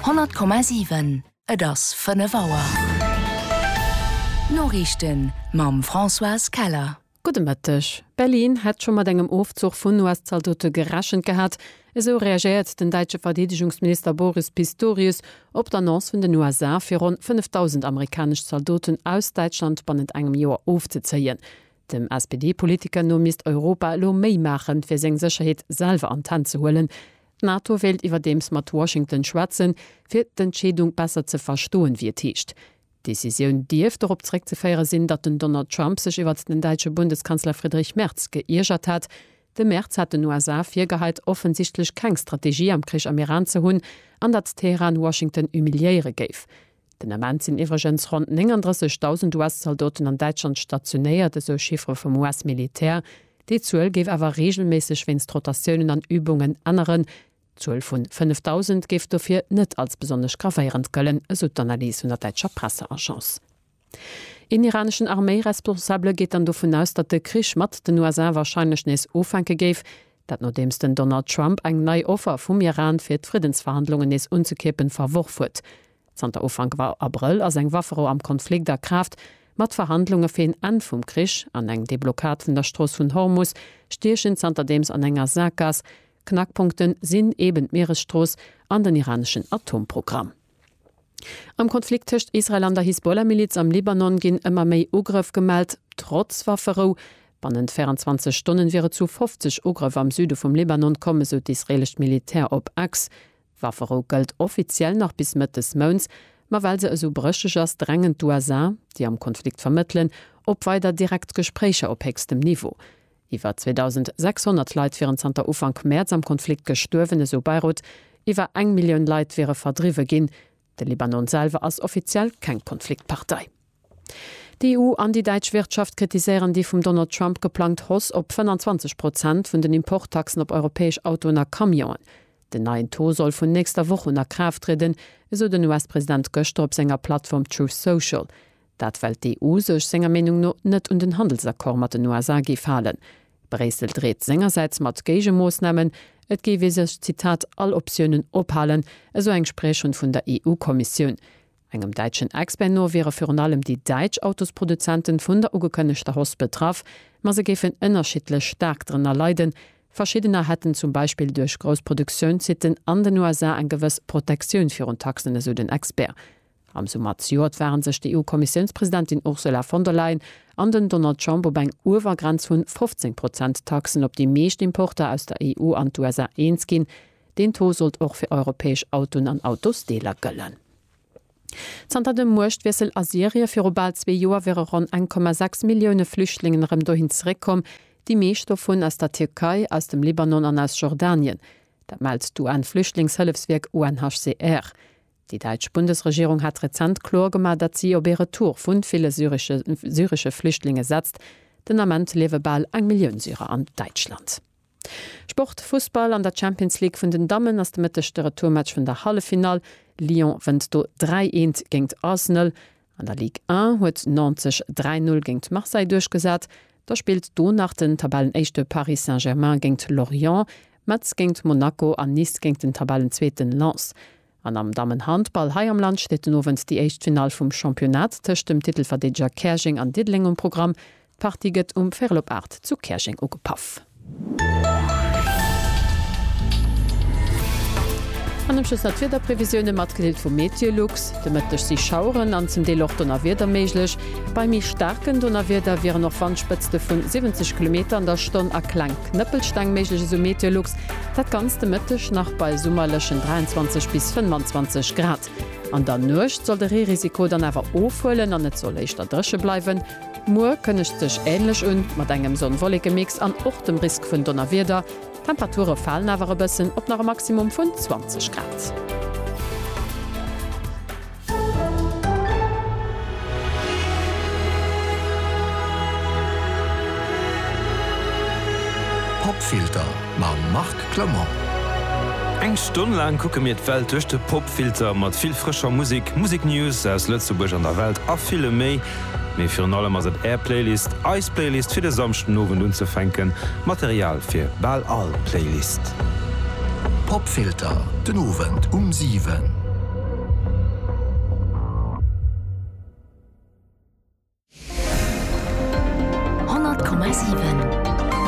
100,7 Et ass 5 Auer. D'Noriichten mam Françoise Keller. Gudde Mëtteg. Berlin hätt scho mat engem Ofzuch vun US-Zaldote gerechent gehat. Esou reagéiert den däitsche Verdeedegungsminister Boris Pistorius op d'Annonce vun den USA, fir ronn 5.000 amerikanesch Zaldoten aus Däitschland bannent engem Joer ofzezéien. Dem SPD-Politiker no misst Europa elo méi maachen, fir seng Sécherheet selwer an d'Hänn ze huelen. D'NATO wéilt iwwerdeems mat Washington schwätzen, fir d'Entscheedung besser ze verstoen, wéi et heescht. D'Decisioun dierft dorop zeréckzeféiere sinn, datt den Donald Trump sech iwwert den däitsche Bundeskanzler Friedrich Merz geiergert hat. De Merz hat den USA virgeheit, offensichtlech keng Strategie am Krich am Iran ze hunn, an datt Teheran Washington humiliéiere géif. Den Ament sinn iwwregens ronn 39.000 US-Zaldoten an Däitschland stationéiert, esou Chiffere vum US-Militär. Déi Zuel géif awer reegelméisseg wéinst Rotatiounen an Übungen änneren. D'Zuel vu 5.000 géif dofir net als besonnesch gravéierend gëllen, esou d'Analys vun der däitscher Presseagence. Een iraneschen Arméiresponsabele geet dann dovun aus, datt de Krich mat den USA warscheinlech nees ufänke géif, Dat nodeems den Donald Trump eng nei Offer vum Iran fir d'Friddensverhandlungen nees unzekeepen verworf huet. Zanter Ufank Abrëll ass eng Wafferou am Konflikt a Kraaft, ma d'Verhandlunge fir een Enn vum Krich an eng Deblockad vun der Strooss vun Hormus stiechen zanterdeems an enger Saakgaass. Knackpunkte sinn eben d'Mieresstrooss an den iraneschen Atomprogramm. Am Konflikt tëscht Israel an der Hisbollah-Miliz am Libanon ginn ëmmer méi Ugrëff gemellt, trotz Wafferou. Bannent 24 Stonnen wier et zu 50 Ugrëff am Süde vum Libanon komm, esou d'israeelescht Militär op X. D'Wafferou gëllt offiziell nach bis Mëtt des Mounts, ma well se esou brécheg ass, drängen d'USA, déi am Konflikt vermëttelen, op weider direkt Gespréicher op héchstem Niveau. Iwwer 2.600 Leit wieren zanter Ufank Mäerz am Konflikt gestuerwen, esou Beirut. Iwwer eng Millioun Leit wiere verdriwwe ginn. De Libanon selwer ass offiziell keng Konfliktpartei. D'EU an déi däitsch Wirtschaft kritiséieren déi vum Donald Trump geplangt Hoss op 25 Prozent vun den Importtaxen op europäesch Autoen a Camionen. Den neien Taux soll vun nächster Woch un a Kraaft trieden, esou den US-President gëschter op senger Plattform Truth Social. Dat well d'EU sech senger Meenung no net un den Handelsaccord mat den USA géif halen. Bréissel dreet sengersäits mat Géigemoossnamen, et géif ee sech, Zitat, all Optiounen ophalen, esou eng Spriecherin vun der EU-Kommissioun. Engem däitschen Expert no wiere virun allem déi däitsch Autosproduzenten vun der ugekënnegter Hoss betraff, ma se géifen ënnerschiddlech staark drënner leiden. Verschiddener hätten zum Beispill duerch grouss Produktiounssitten an den USA eng gewëss Protektioun virun Taxen, esou den Expert. Am Summer zejoert ware sech d'EU-Kommissiounspresidentin Ursula von der Leyen an den Donald Trump op eng Uewergrenz vu 15 Prozent Taxen op déi meescht Importer aus der EU an d'USA eens ginn. Deen Taux sollt och fir europäesch Autoen an Autosdeeler gëllen. Zanter dem Muechtwiessel a Syrie viru bal zwee Joer wiere ronn 1,6 Millioune Flüchtlingen erëm dohin zeréckkomm, déi meescht dovun aus der Tierkei, aus dem Libanon an aus Jordanien. Dat mellt d'UN-Flüchtlingshëllefswierk UNHCR. Déi däitsch Bundesregierung hat rezent kloer gemaach, datt si op ee Retour vu ville syresche Flüchtlinge setzt. Den Ament liewe bal eng Millioun Syrer an Däitschland. Sport, Fussball, An der Champions League vun den Dammen ass de Mëtteg de Retourmatch vun der Halleffinall. Lyon wënnt do 3, 1 géingt Arsenal. An der Ligue 1 huet Nantes sech 3 Null géngt Marseille duerchgesat. Da spillt do nach den Tabellenéischte Paris Saint-Germain géngt Lorient, Metz géngt Monaco an Nice géngt den Tabellenzweeten Lens. An am Dammenhandball hei am Land steet den Owend déi éischt Finall vum Championnat tëscht dem Titelverdeedeger Käerjeng an Diddeleng um Programm. D'Party gëtt um Ferlopart zu Käerjeng ugepaff. An am Schluss nach d'Wiederprevisioune mat Grillt vu Meteolux. De Mëtteg si Schaueren an zum Deel och Donnerwieder méiglech. Bei méi staarken Donnerwieder wieren och Wandspëtzte vu 70 Kilometer an der Stonn a kleng Knëppelsteng méiglech, esou Meteolux. Dat ganzt de Mëtteg nach bei summerlechen 23 bis 25 Grad. An der Nuecht soll de Reerisiko dann awer ofhuelen an et soll éischter dréche bleiwen. Muer kënnegt sech änlech un, mat engem Sonn-Wollekemix an och dem Risk vun Donnerwieder. D'Temperature falen awer e bëssen op nach e Maximum vun 20 Grad. Popfilter mam Marc Clement. Eng Stonn laang kucke mir d'Welt duerch de Popfilter, mat vill frëscher Musek, Museknews aus Lëtzebuerg an der Welt a villem méi. Mee virun allem ass et Är Playlist, eis Playlist fir de Samschden Owend unzefänken, Material fir bal all Playlist. Popfilter, den Owend um 7.